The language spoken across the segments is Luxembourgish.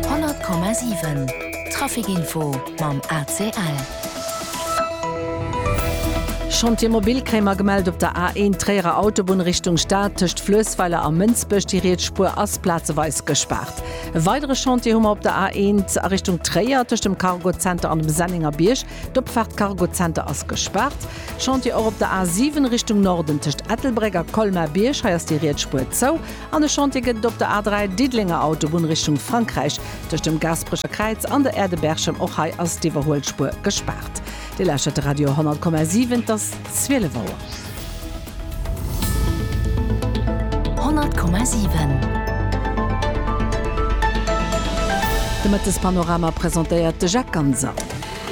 100,7 Trafic Info mam ACL. Chantier mobil Kréimer gemellt op der A1 Tréierer Autobunn Richtung Stad tëscht Fluessweiler a Mënsbech. Déi riets Spuer ass plazeweis gespaart. E weidere Chantier hu mer op der A1 a Richtung Tréier tëscht dem Cargo Center an dem Sennenger Bierg. D'Opfaart Cargo Center ass gespaart. Chantier och op der A7 Richtung Norden tëscht Ettelbréck a Colmar-Bierg. Hei ass déi riets Spuer zou. An e Chantier gëtt et op der A3, Diddelenger Autobunn Richtung Frankräich, tëscht dem Gaasperecher Kräiz an der Aire de Berchem. Och hei ass d'Iwwerhuelspuer gespaart. Dir lauschtert de Radio 100,7, et ass 12 Auer. 100,7 De Mëttespanorama presentéiert de Jacques Ganser.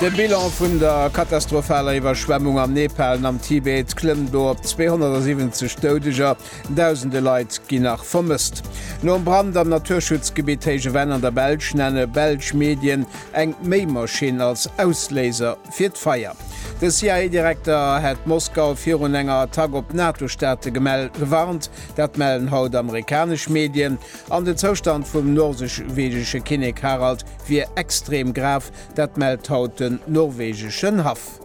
De Bilan vun der katastrophaler Iwwerschwemmung am Nepal an am Tibet klëmmt elo op 270 Doudeger. Dausende Leit ginn nach vermësst. Nom Brand am Naturschutzgebitt Héije Venn an der Belsch nenne belsch Medien eng Méimaschinn als Ausléiser fir d'Feier. De CIA-Direkter hätt Moskau virun enger Attack op d'NATO-Staate gewarnt, dat mellen haut amerikanesch Medien. An den Zoustand vum norwegesche Kinnek Harald wier extrem grav, dat mellt haut den norwegeschen Haff.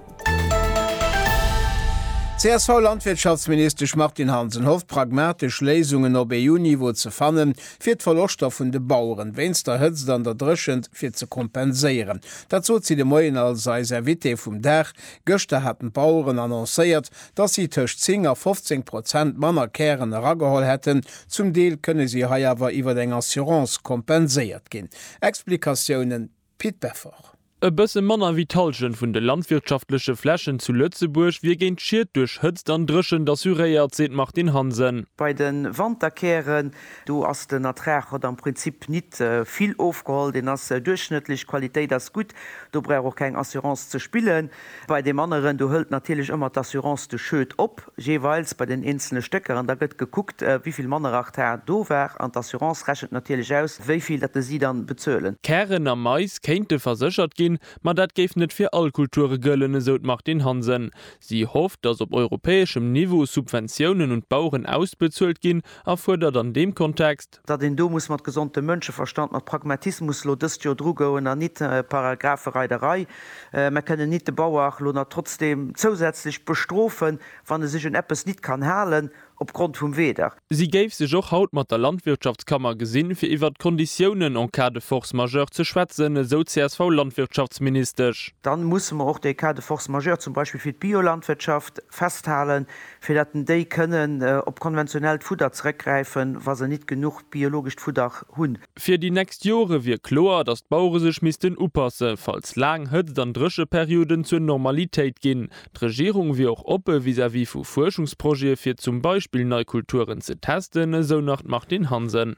D'CSV-Landwirtschaftsministesch Martine Hansen hofft, pragmatesch Léisungen op EU-Niveau ze fannen, fir d'Verloschter vun de Baueren wéinst der Hëtzt an der Dréchent fir ze kompenséieren. Dat sot si de Moien als eis Invitée vum Dag. Gëschter haten d'Baueren annoncéiert, datt si tëscht 10 a 15 Prozent manner Kären erageholl hätten. Zum Deel kënne si hei awer iwwer eng Assurance kompenséiert ginn. Explikatiounen. Pit Beffort. E bësse manner wéi d'Hallschent vun de landwirtschaftleche Flächen zu Lëtzebuerg wier géint Schied duerch Hëtzt an Dréchent assuréiert, seet d'Martine Hansen. Bei de Wanterkären, do ass den Ertrag hat am Prinzip nit vill ofgeholl, deen ass duerchschnëttlech, d'Qualitéit ass gutt, do brauch och keng Assurance ze spillen. Bei deem aneren, do hëlt natierlech ëmmer d'Assurance de Schued op, jeeweils bei den eenzele Stécker, an da gëtt gekuckt, wéi vill Mannerachthar do war, an d'Assurance rechent natierlech aus, wéi vill datt si dann bezuelen. Kären a Mais kéinte verséchert ginn, ma dat géif net fir all Kulture gëllen, esou d'Martine Hansen. Si hofft, datt op europäeschem Niveau Subventiounen un d'Baueren ausbezuelt ginn a fuerdert an deem Kontext, datt een do muss mat gesondem Mënscheverstand, mat Pragmatismus elo dëst Joer drugoen an nit Paragraphereiderei. Mer kënnen nit de Bauer elo nach trotzdem zousätzlech bestrofen, wann e sech un eppes nit kann halen opgrond vum Weder. Si géif sech och haut mat der Landwirtschaftskammer gesinn, fir iwwert d'Konditiounen en cas de force majeure ze schwätzen, esou d'CSV-Landwirtschaftsministesch. Dann musse mer och dee Cas de force majeure zum Beispill fir d'Biolandwirtschaft festhalen, fir dat den déi kënnen op konventionellt Fudder zeréckgräifen, wa se nit genuch biologescht Fudder hunn. Fir déi nächst Jore wier kloer, datt d'Bauere sech missten upasse, falls laang Hëtzt an Drécheperioden zur Normalitéit ginn. D'Regierung wier och oppe vis-à-vis vu Fuerschungsprojete fir zum Beispill nei Kulturen ze testen, esou nach d'Martine Hansen.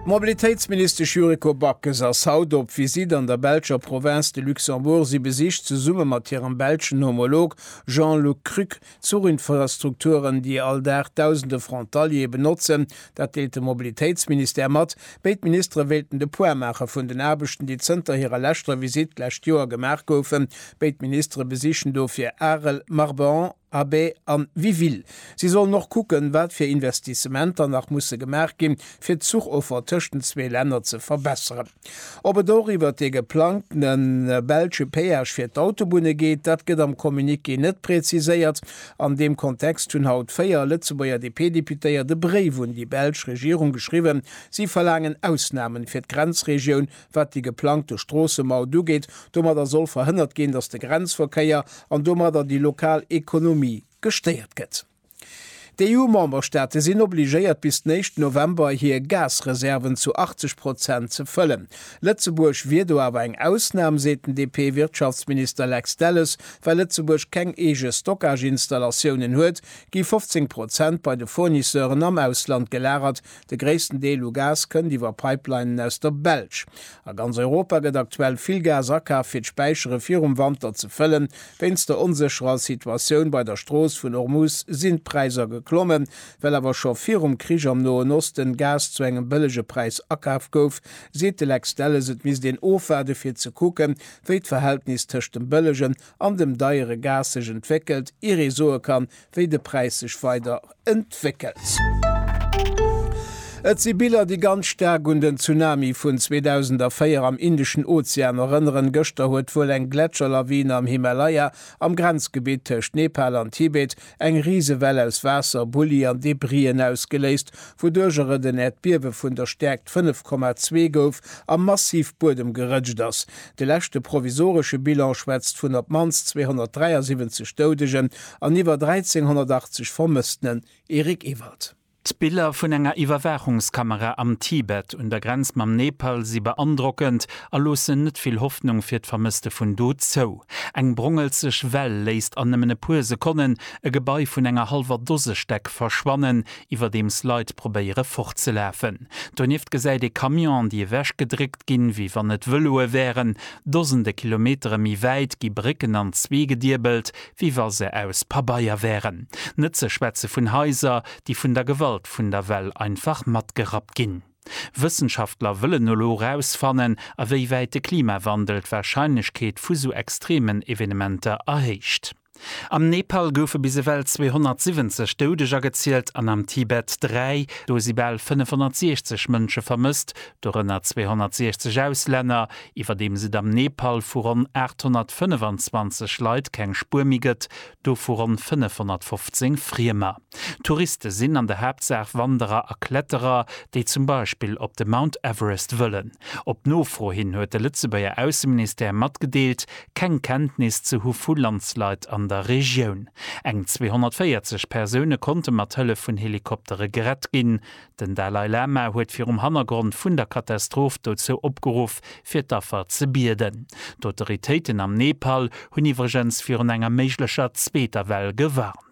D'Mobilitéitsministesch Yuriko Backes ass haut op Visitt an der belscher Provënz de Luxembourg. Si besicht zesumme mat hirem belschen Homolog Jean-Luc Cruc d'Zuchinfrastrukturen, déi all Dag dausende Frontaliere benotzen. Dat deelt de Mobilitéitsministère mat. Béid Ministere wéilten de Point maache vun den Aarbechten, déi zënter hirer leschter Visitt d'lescht Joer gemaach goufen. Béid Ministere besichen dofir Arel, Marbach, Abbe an Wiville. Si sollen och kucken, wat fir Investissementer nach musse gemaach ginn, fir d'Zuchoffer tëscht den zwee Länner ze verbesseren. Ob et och iwwert dee geplangtene belsche Péage fir d'Autobunne geet, dat gëtt am Communiqué net präziséiert. An deem Kontext hunn haut véier Lëtzebuerger DP-Deputéiert e Bréif un déi belsch Regierung geschriwwen. Si verlaangen Ausnamen fir d'Grenzregioun Wat déi geplangte Stroossemaut ugeet, domadder soll verhënnert ginn, datt de Grenzverkéier an domadder déi lokal Ekonomie gestéiert gëtt. D'EU-Memberstaate sinn obligéiert bis den éischten November hir Gasreserven zu 80 Prozent ze fëllen. Lëtzebuerg wier do awer eng Ausnam, seet den DP-Wirtschaftsminister Lex Delles. Well Lëtzebuerg keng eege Stockage-Installatiounen huet, gi 15 Prozent bei de Fournisseuren am Ausland gelagert, De gréissten Deel u Gas kënnt iwwer Pipelinen aus der Belsch. A ganz Europa gëtt aktuell vill Gas akaf fir d'Späichere virum Wanter ze fëllen. Wéinst der onsécherer Situatioun bei der Strooss vun Ormuz sinn d'Präisser geklommen. Well awer scho virum Krich am Noen Osten Gas zu engem bëllege Präis akaf gouf, seet de Lex Delles, et misst een ofwaarde fir ze kucken, wéi d'Verhältnis tëscht dem bëllegen an dem deiere Gas sech entwéckelt, ier ee soe kann, wéi de Präis sech weider entwéckelt. Et si Biller, déi ganz staark un den Tsunami vun 2004 am Indeschen Ozean erënneren. Gëschter huet wuel eng Gletscherlawine am Himalaya, am Grenzgebitt tëscht Nepal an Tibet, eng Risewell aus Waasser, Bulli an Debrien ausgeléist, wouduercher et en Äerdbiewe vun der Stäerkt 5,2 gouf a massiv Buedem gerëtscht ass. De leschte provisoresche Bilan schwätzt vun op d'mannst 273 Doudegen an iwwer 1.380 Vermëssenen, Eric Ewald. D'Biller vun enger Iwwerwaachungskamera am Tibet un der Grenz mam Nepal si beandrockend a loossen net vill Hoffnung fir d'Vermësste vun do zou. Eng brongelzeg Well léisst an nëmmen e puer Sekonnen e Gebai vun enger hallwer Dose Stäck verschwannen, iwwerdeems Leit probéiere fortzelafen. Donieft gesäit ee Camionen, déi ewechgedréckt ginn, wéi wann et Vëloe wären. Dosende Kilometere méi wäit gi Brécken an zwee gediebelt, wéi wa se aus Pabeier wären. Net ze schwätze vun Haiser, déi vun der Gewalt vun der Well einfach matgerappt ginn. Wëssenschaftler wëllen elo erausfannen, a wéi wäit de Klimawandel d'Warscheinlechkeet vu sou extreemen Evenementer erhéicht. Am Nepal goufe bis ewell 270 Doudeger gezielt an am Tibet dräi. Do si bal 560 Mënsche vermësst, dorënner 260 Auslänner. Iwwerdeems et am Nepal vu ronn 825 Leit keng Spuer méi gëtt, dovu ronn 515 Friemer. Touriste sinn an der Haaptsaach Wanderer a Kletterer, déi zum Beispill op de Mount Everest wëllen. Op Nofro hin huet de Lëtzebuerger Ausseministère matgedeelt, keng Kenntnis ze hu vu Landslide an der Regioun. Eng 240 Persoune konnte mat Hëllef vun Helikoptere gerett ginn. Den Dalai Lama huet virum Hannergrond vun der Katastroph dozou opgeruff, fir d'Affer ze bieden. D'Autoritéiten am Nepal hunn iwwregens virun enger méiglecher zweeter Well gewarnt.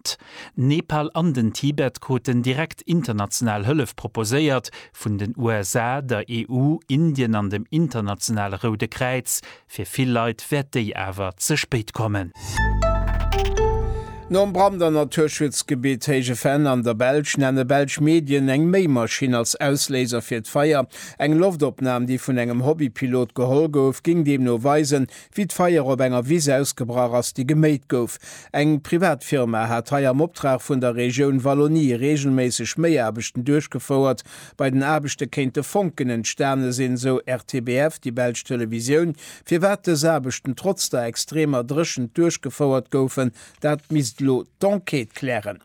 D'Nepal an den Tibet kruten direkt international Hëllef proposéiert, vun den USA, der EU, Indien an dem Internationale Roude Kräiz. Fir vill Leit wäert déi awer ze spéit kommen. Nom Brand am Naturschutzgebitt Héije Venn an der Belsch nenne belsch Medien eng Méimaschinn als Ausléiser fir d'Feier. Eng Loftopnam, déi vun engem Hobbypilot geholl gouf, géing deemno weisen, Wéi d'Feier op enger Wiss ausgebrach ass, déi geméit gouf. Eng privat Firma hat hei am Optrag vun der Regioun Wallonie reegelméisseg Méiaarbechten duerchgefouert. Bei den Aarbechte kéinte Fonken entstane sinn, sou RTBF, déi belsch Televisioun. Firwat dës Aarbechten trotz der extremer Dréchent duerchgefouert goufen, dat misst elo d'Enquête klären.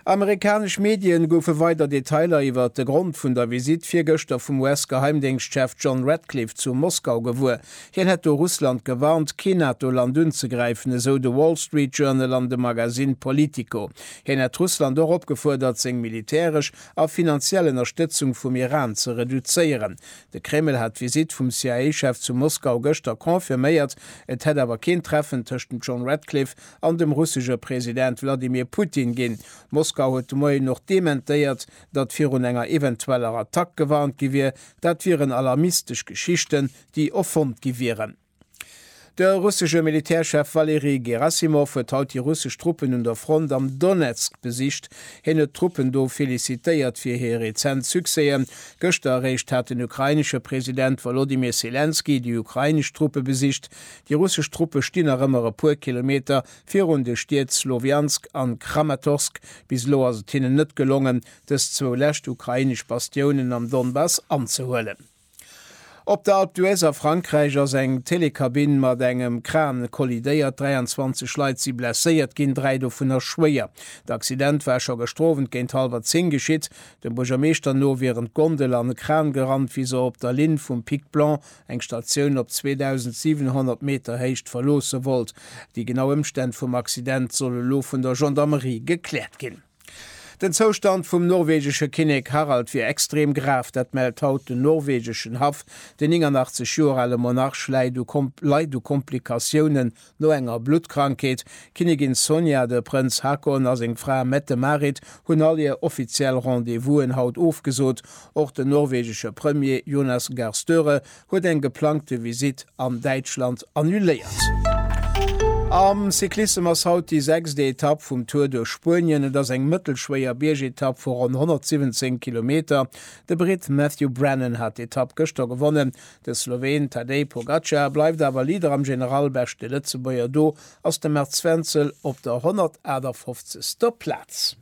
Amerikanesch Medien goufe weider Detailer iwwer de Grond vun der Visitt virgëschter vum US-Geheimdéngschtchef John Ratcliffe zu Moskau gewuer. Hien hätt do Russland gewarnt, kee NATO-Land unzegräifen, esou de Wall Street Journal an de Magasinn Politico. Hien hätt Russland och opgefuerdert, seng militäresch a finanziell Ënnerstëtzung vum Iran ze reduzéieren. De Kreml hat d'Visitt vum CIA-Chef zu Moskau gëschter confirméiert, et hätt awer keen Treffen tëscht dem John Ratcliffe an dem russesche President Wladimir Putin ginn. Moskau huet de Moien och dementéiert, datt virun enger eventueller Attack gewarnt gi wier. Dat wieren alarmistesch Geschichten, déi erfonnt gi wieren. De russesche Militärchef Valeri Gerasimov huet haut déi russesch Truppen un der Front am Donezk besicht. Hien huet d'Truppen do felicitéiert fir hir rezent Succèsen. Gëschter eréischt hat den ukrainesche President Wolodymyr Selenskyj déi ukrainesch Truppe besicht. Déi russesch Truppe stinn nach ëmmer e puer Kilometer virun de Stied Slowiansk a Kramatorsk. Bis elo ass et hinnen net gelongen, dës zwou lescht ukrainesch Bastiounen am Donbass anzehuelen. Op der Alpe d'Huez a Frankräich ass eng Telekabinn mat engem Kran kollidéiert. 23 Leit si blesséiert ginn, dräi dovunner schwéier. De Accident war scho gestrowent géint hallwer zéng geschitt. Dem Buergermeeschter no wieren d'Gondel an e Kran gerannt, wéi se op der Linn vum Pic Blanc eng Statioun op 2.700 Meter Héicht verloosse wollt. Déi genau Ëmstänn vum Accident solle lo vun der Gendarmerie gekläert ginn. Den Zoustand vum norwegesche Kinnek Harald wier extrem grav, dat mellt haut den norwegeschen Haff. Den 89 Joer ale Monarch läit u Komplikatiounen No enger Bluttkrankheet, d'Kinnigin Sonja, de Prënz Haakon a seng Fra Mette-Marit hunn all hir offiziell Rendez-Vousen haut ofgesot. Och den norwegesche Premier Jonas Gahr Støre huet eng geplangte Visitt an Däitschland annuléiert. Am Cyclissem ass haut déi sechst Etapp vum Tour duerch Spuenien. Et ass eng mëttelschwéier Biergetapp vu ronn 117 Kilometer. De Britt Matthew Brennan hat d'Etapp gëschter gewonnen. De Sloween Tadej Pogacar bleift awer Leader am General, beschte Lëtzebuerger do ass de März Wenzel op der 158. Plaz.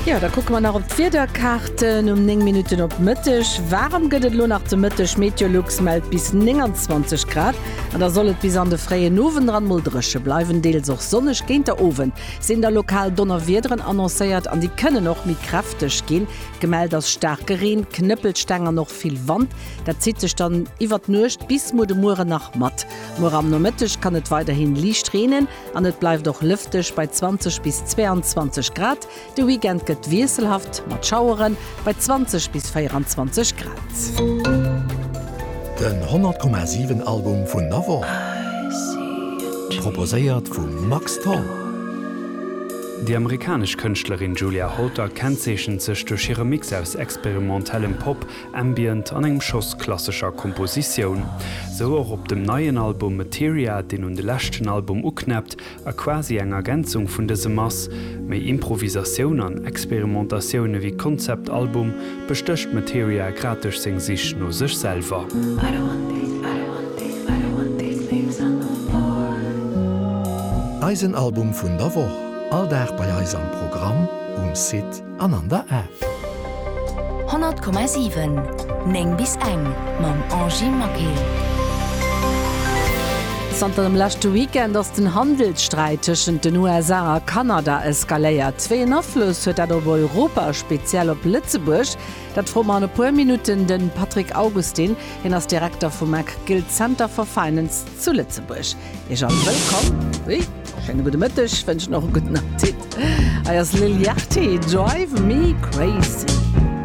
Jo, da kucke mer nach op d'Wiederkaarten. Um 9 Minutten op Mëtteg. Waarem gëtt et elo nach de Mëtteg. Meteolux mellt bis 29 Grad an da soll et bis an de fréien Owend eran mol dréche bleiwen, deels och sonneg. Géint der Owend sinn da lokal Donnerwiederen annoncéiert an déi kënnen och méi kräfteg ginn. Gemellt ass staarke Reen, Knëppelsteng an och vill Wand. Dat zitt sech dann iwwert d'Nuecht bis muer de Muere nach mat. Muer am Nomëtteg kann et weiderhin liicht reenen an et bleift och lëfteg bei 20 bis 22 Grad. De Weekend gëtt wiesselhaft mat Schaueren bei 20 bis 24 Grad. Den 100,7 Album vun der Woch proposéiert vum Max Tholl. Déi amerikanesch Kënschtlerin Julia Holter kennzeechent sech duerch hire Mix aus experimentellem Pop, Ambient an engem Schoss klassescher Kompositioun. Sou och op dem neien Album Materia, deen un de leschten Album uknäppt a quasi eng Ergänzung vun dësem ass. Méi Improvisatioun an Experimentatioun ewéi Konzeptalbum bestécht d'Materia grad duerch seng Sich no sech selwer. Eisen Album vun der Woch, all Dag bei eis am Programm, um Site an an der App. 100,7, 9 bis eng mam Angy Maquil. Zanter dem leschte Weekend ass den Handelssträit tëschent den USA a Kanada eskaléiert. Wéi een Afloss huet dat op Europa a speziell op Lëtzebuerg? Dat froe mer an e puer Minutten de Patrick Augustin. Hien ass Direkter vum Mac Gill Center for Finance zu Lëtzebuerg. Iech all wëllkomm. Ui, schéine gudde Mëtteg, wënschen och e gudden Appetit. Hei ass Lil Yachty, Drive Me Crazy.